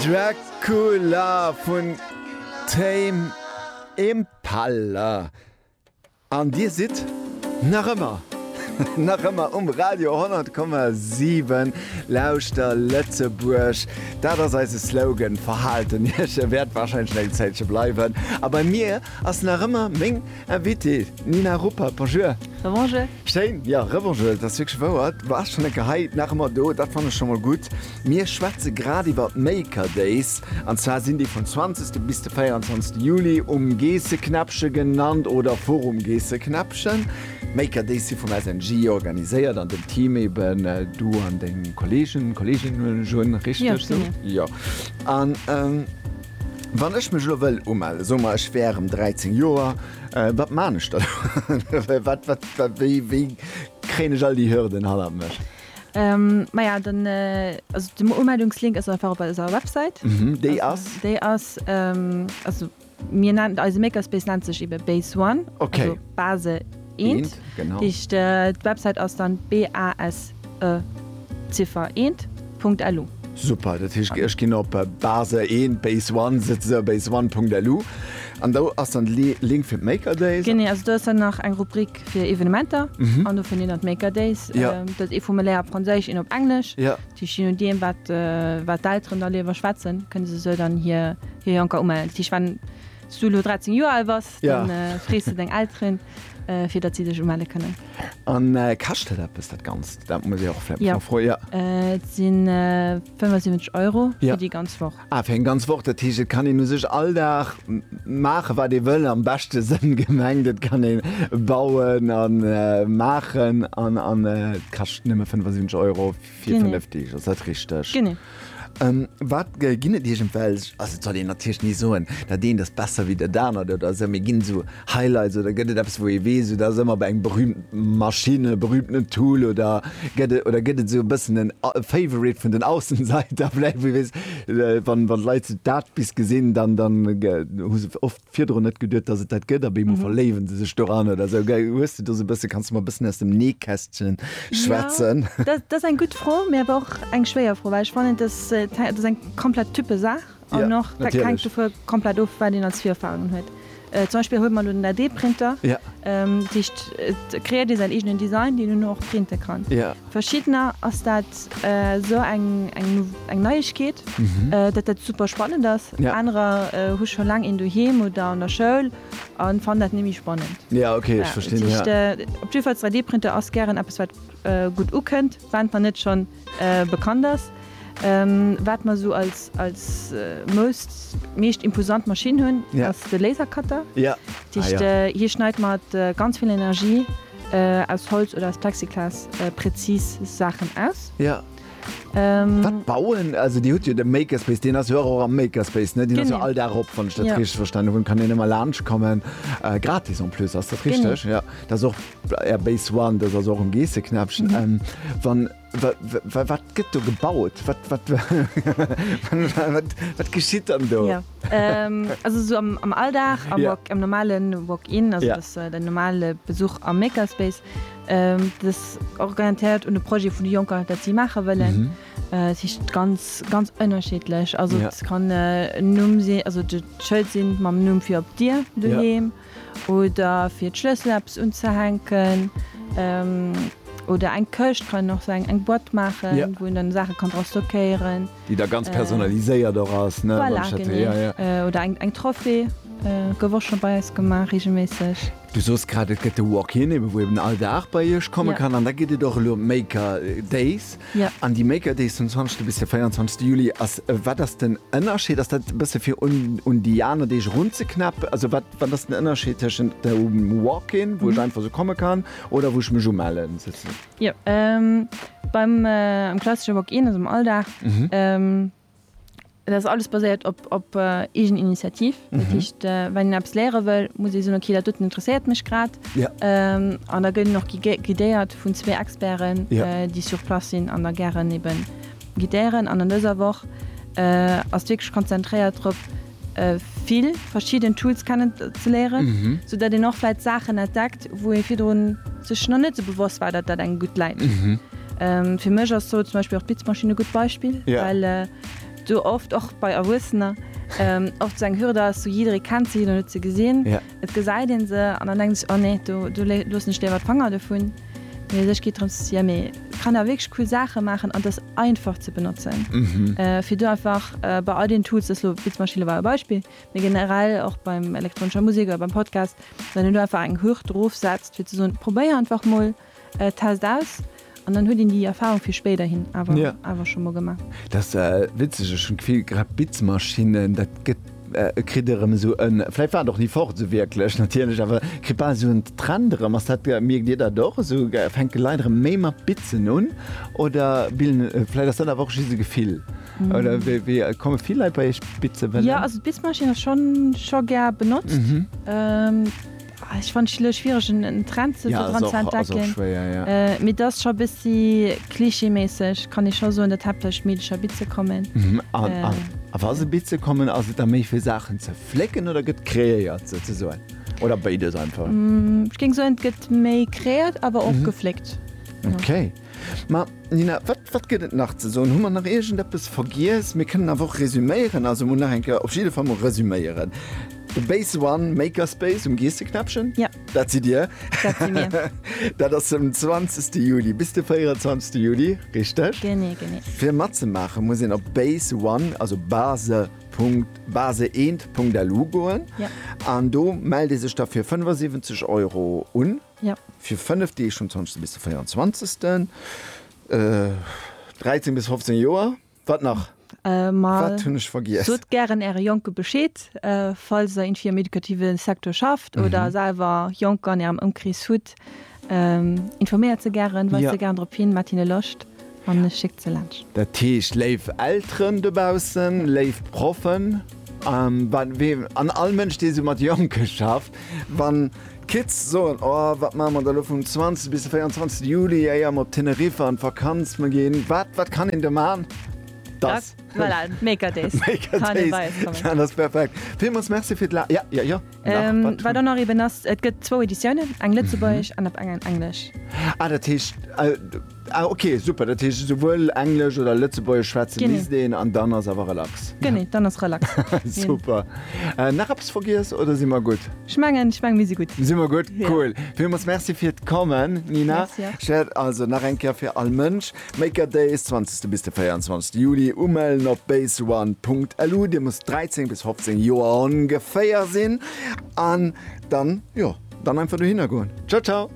Dracula vun Tame Impala an Dir sidd nach ëmmer nach ëmmer um Radio 10,7 Lauschter Lëtzebuerg. Dat ass eise Slogan, Verhalten Iech, e wäert warscheinlech nach eng Zäitche bleiwen. A bei mir ass nach ëmmer meng Invitée Nina Ruppert. Bonjour. Rebonjour. Schéin, jo Revanche, dat ass wierklech wouer. Du waars schonn enker hei, nach ëmmer do, dat fannen ech schonn mol gutt. Mir schwätze grad iwwer d'Maker Days, an zwar sinn déi vum 20. bis de 24. Juli um Geesseknäppche genannt oder Forum Geesseknäppchen. D'Maker Days si vum SNJ organiséiert an dem Team eben du an deng Kollegen, Kolleginnen, hunn ech un, richteg sou? Jo, an wann ech mech elo wëll umellen, soe mer ech wär erëm 13 Joer, Wat maan ech dann? Wat wat wat wéi wéi kréien ech all déi Hürden hannert mech? Maja den also den Umeldungslink ass einfach op eiser Website. Mhm, déi ass? Déi ass also mir nennen eise Makerspace nennt sech ebe Base One, also Base eent. Eent, genau. D'Website ass dann BASE. e Ziffer eent Punkt elu. Super, dat heescht ech ginn op Base eent Base one setze se op Base one Punkt elu an do ass dann de Link fir d'Maker Days. Genee, also do ass dann nach eng Rubrik fir Evenementer an dofir nennen d'Maker Days dat ee Formulaire op Franséisch, een op Englesch. Dat heescht, je nodeem wat wat d'Elteren da liewer schwätzen, kënne se sou dann hir hir Jonker umellen. Dat heescht, wann s du elo 13 Joer al bass, da frees de deng Elteren, fir datt si dech umelle kënnen. An kascht dat eppes dat Ganzt? Dat muss ee och vläicht mech erfroen, jo. Et si 75 Euro fir déi ganz Woch. Ah, fir eng ganz Woch. Dat heescht, et kann een u sech all Dag maachen, wat ee wëll, am beschte Sënn gemengt. Et kann ee bauen a maachen an et kascht nëmme 75 Euro. Fir 5 Deeg, ass dat richteg? Genee. Wat ginn et iergendwelch, also et soll een natierlech ni soen, dat eent ass besser wéi dat anert oder esou, mee ginn et esou Highlights oder gëtt et eppes wou ee weess, dat ass ëmmer bei engem berühmten Maschinn oder berühmten Tool oder gëtt et oder gëtt et esou e bëssen en Favorite vun den Aussenseiter vläicht, wou ee weess, wann d'Leit dat bis gesinn, dann hu se oft. virdrun net geduet dass et dat gëtt a bemol verléiwen se sech doran oder sou gei hues du do sou bësse kanns du mer bëssen aus dem Nähkästchen schwätzen? Ja, dat dat ass eng gutt Fro, mee awer och eng schwéier Fro, well ech fannen et ass et ass eng komplett Typesaach Ja, an och dat hänkt natierlech. dovun komplett of wat een als Virerfahrungen huet. Zum Beispill huet mer elo den 3D-Printer, Ja. dat heescht et kreéiert ee säin eegenen Design deen een och printe kann. Ja. Verschiddener ass dat esou eng eng Neiegkeet, dat dat super spannend ass. Anerer hu scho laang een doheem oder an der Schoul a fannen dat net méi spannend. Jo, ok, ech verstinn. Dat heescht, op jiddwer Fall, 3D-Printer ass gären eppes, wat gutt ukënnt, wann et net schonn bekannt ass. Wat mer esou als als most meescht imposant Maschinn hunn, ass de Lasercutter. Dat heescht, hie schneit mat ganz vill Energie. Aus Holz oder aus Plexiglas präzis Saachen aus. Ja. Wat bauen also Dir hutt jo de Makerspace, deen ass jo och am Makerspace, ne? Deen ass jo all Dag op, wann ech dat richteg verstanen hunn. Kann een ëmmer laanscht kommen, gratis en plus, ass dat richteg? Genau. Ja, dat ass och Air Base One, dat ass och um Geesseknäppchen. Wann. Wat gëtt do gebaut? Wat geschitt dann do? Also am Alldag am normale Walk-in, den normale Besuch am Makerspace, dës orientéiert un de Projet vun de Jonker, dat si maache wëllen. Et si ganz ganz ënnerschiddlech. Also et kann e Numm sinn, also de Schëld sinn mam Numm fir op d'Dier doheem. Oder fir d'Schlëssel eppes unzehänken. Oder eng Këscht kann och sein, eng Boîte maachen, wou een dann Saache kann dra stockéieren. Déi da ganz personaliséiert och ass, ne? Voilà, genee. Oder eng Trophée, gouf och scho bei eis gemaach, reegelméisseg. Du soos grad, et gëtt de Walk-in, ebe wou eben all Dag bei iech komme kann. An da gëtt et och elo Maker Days. An déi Maker Days vum 20 bis de 24 Juli ass wat ass den Ënnerscheed? Ass dat e bësse fir un déi aner Deeg erunzeknäppen? Also wat wat ass den Ënnerscheed tëschent dem Walk-in, wou ech einfach esou komme kann oder wou ech mech umelle souzesoen? Jo, beim am klassesche Walk-in, also am Alldag, Et ass alles baséiert op, op Eegeninitiativ. Dat mhm. heescht, äh, wann een eppes léiere wëll, muss ee soen, okay, dat doten interesséiert mech grad. Ja. Ähm, an da gëtt noch guidéiert vun zwee Experten, ja. äh, déi sur Plas sinn an der gären eben guidéieren. An an dëser Woch äh, ass wierklech konzentréiert drop, vill verschidden Tools kennen ze léieren, sou dat een och vläit Saachen entdeckt, wou ee virdrun sech nach net sou bewosst war, dat dat engem gutt läit. Fir mech ass do zum Beispill och d'Blitzmaschinn e gutt Beispill, well do oft och bei Erwuessener oft sou eng Hürde ass, sou jidderee kennt se, jiddereen huet se gesinn, Et gesäit een se an dann denkt een sech, oh nee, do loossen ech léiwer d'Fanger dovun. Mee u sech geet drëms ze sien, mee et kann awer wierklech cool Saache maachen an et ass einfach ze benotzen. Fir do einfach bei all den Tools, dat elo Beatsmachine war e Beispill, mee generell och beim elektronescher Musek oder beim Podcast, wann een do einfach eng Hürd drofsetzt fir ze soen, probéier einfach mol. Test aus an dann huet een déi Erfahrung fir spéiderhin awer scho mol gemaach. Dat ass witzeg, ech hunn d'Gefill grad Bitzmaschinnen, dat gëtt, kritt erëm esou en, vläicht war et och ni fort esou wierklech natierlech, awer kritt bal esou en Trend erëm. Ass dat, mierkt Dir dat och esou, fänke Leit erëm méi mat Bitzen un oder bilden, vläicht ass dat awer och just e Gefill? Oder wéi komme vill Leit bei Iech bitze wëllen? Jo, also d'Bitzmaschinn ass schonn scho gär benotzt. Ah, ech fand schlo schwierig en Trend zu ja, dran ze entdecken. Schwer, ja. äh, mit das scho bissi klischeemäßig kann ich schon so in der Teppich Mädchen Bitze kommen. Mhm, an, äh, an. A was se Bitze kommen as et da méi fir Sachen ze flecken oder gëtt kreéiert se ze soen? Oder beides einfach? Mm, ich ging so gëtt méi kreéiert, aber och mhm. gefleckt. Okay. Ma, Nina, wat, wat gëtt et nach ze soen? Hu mer nach iergend eppes vergiess? Mir kënnen awer och resuméieren, also mol nach eng Kéier, op jidde Fall mol resuméieren, De Base One Makerspace um Geesseknäppchen, Ja. dat sidd Dir. Dat si mir. Dat ass um 20. Juli bis de 24. Juli, richteg? Genee, genee. Fir matzemaachen, muss een op Base One, also Base. Punkt, baseeent.lu goen. Ja. An do mellt ee sech da fir 75 Euro un. Jo. Fir 5 Deeg, vum 20. bis de 24. 13 bis 15 Joer. Wat nach? Wat hunn ech vergiess? Sot gären Äre Jonke Bescheed, falls der iergendwéi am edukative Secteur schafft oder selwer Jonker an Ärem Ëmkrees hutt. Informéiert se gären, weist se gären drop hin, maacht hinne Loscht. an ech schick se laanscht. Dat heescht, léif Elteren dobaussen, léif Proffen, an all Mënsch, dee sou mat Jonke schafft, wann d'Kids soen, O wat maache mer da elo vum 20 bis de 24 Juli, éier mer op Teneriffa an d'Vakanz mer ginn, wat, wat kann een do man? Voilà, Maker Days. Maker Days, dat ass perfekt. Villmools Merci fir d'La. Wat dann nach eben ass, et gëtt zwou Editiounen, eng Lëtzebuergesch an op eng Englesch. Ah, dat heescht, ah, okay, super, dat heescht esouwuel Englesch oder Lëtzebuergesch schwätze misst een an dann ass awer relax. Genee, dann ass relax. Super. Nach eppes vergiess oder si mer gutt? Ech mengen, ech mengen, mir si gutt. Si mer gutt, cool. Villmools Merci fir d'Kommen, Nina. Merci och. Ech wäert also nach eng Kéier fir all Mënsch, Maker Days, zwanzegste bis de 24 Juli, umellen op baseone.lu, dir musst 13 bis 15 Joer ongeféier sinn an dann jo dann einfach dohinner goen. Ciao ciao.